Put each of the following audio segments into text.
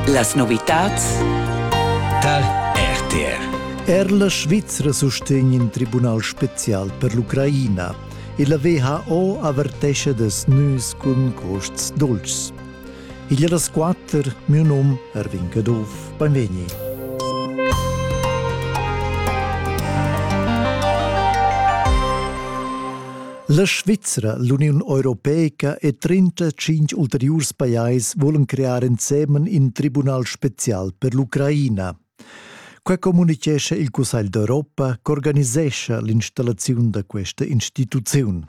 Las novitads dal RTR Er la Svizra sustegn in tribunal spezial per l'Ucraina e la WHO avertescha das nus cun costs dolcs. Il das quatter, mio num Erwin Caduff, benvegni. La Svizra, l'Uniun Europeica e 35 ulteriurs pajais volan crear ensemen in tribunal spezial per l'Ucraina. Quai communitgescha il Cussegl d'Europa ch'organisescha l'installaziun da questa instituziun.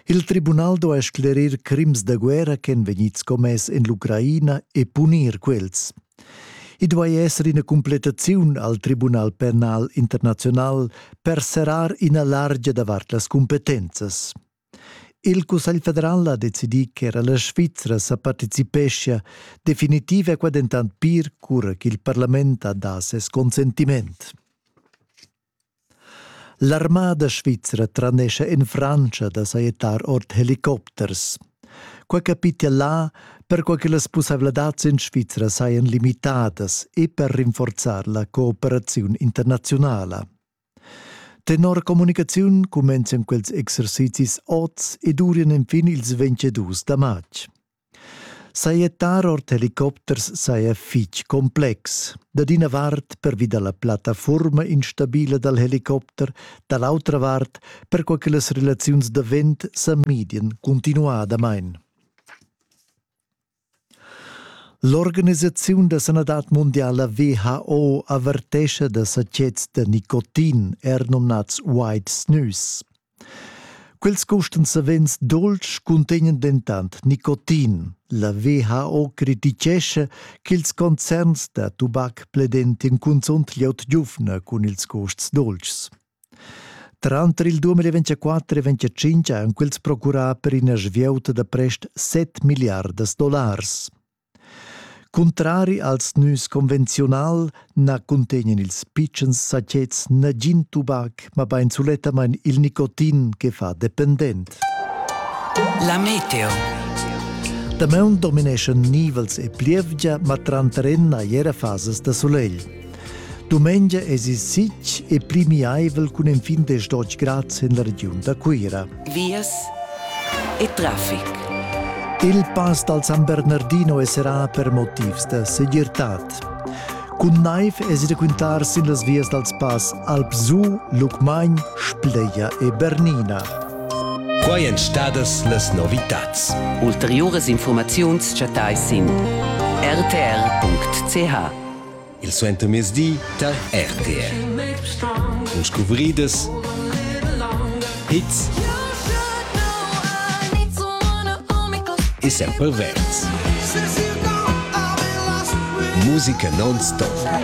Il tribunal do a sclerir crims da guerra ch'èn vegnids commess en l'Ucraina e punir quels. I duai esser ina cumplettaziun al Tribunal penal internaziunal per serrar ina largia davart las cumpetenzas. Il Cussegl federal ha decidì ch'era la Svizra sa participeschia definitiv a qua dentant pir cura ch'il parlament ha dà ses consentiment. L'armada svizra tranescha en Frantscha da sajettar ord helicopters. Quai capitia là perquai che las pussaivladads en Svizra sajan limitadas e per rinforzar la cooperaziun internaziunala. Tenor communicaziun cumenzian quels exercizis oz e durian enfin ils 22 da matg. Sajettar ord helicopters saja fitg complex. Dad ina vart pervi da la plattafurma instabila dal helicopter, da l'autra vart perquai che las relaziuns da vent sa midian cuntinuadamain. L'organisaziun da sanadad mondiala WHO avertescha da satgets da nicotin, er nomnads white snus. Quels custan savens dolcs cuntegnan dentant nicotin. La WHO criticescha ch'ils concerns da tubac pledentian cunzunt glieud giuvna cun ils custs dolcs. Tranter il 2024 e 2025 han quels procurà per ina svieuta da prest 7 milliardas dollars. Cuntrari als nüs convenziunal na cuntegnan ils pitschens sachets nagin tubac, mabain sulettamain il nicotin che fa dependent. La meteo. Damaun domineschan nivels e plievgia, ma tranter en hai era fasas da sulegl. Dumengia es il sitg e pli miaivel cun enfin desdotg grads in la regiun da Cuira. Vias e trafic. Il pass dal San Bernardino esserà per motivs da segirtad. Cun naiv es il quintar sin las vias dals pass Alpsu, Lucmagn, Spleia e Bernina. Quai èn stadas las novitads. Ulteriuras informaziuns chattais sin rtr.ch. il suentermezdi tar RTR. Cun scuvridas, hits e sempre verds. Musica non-stop.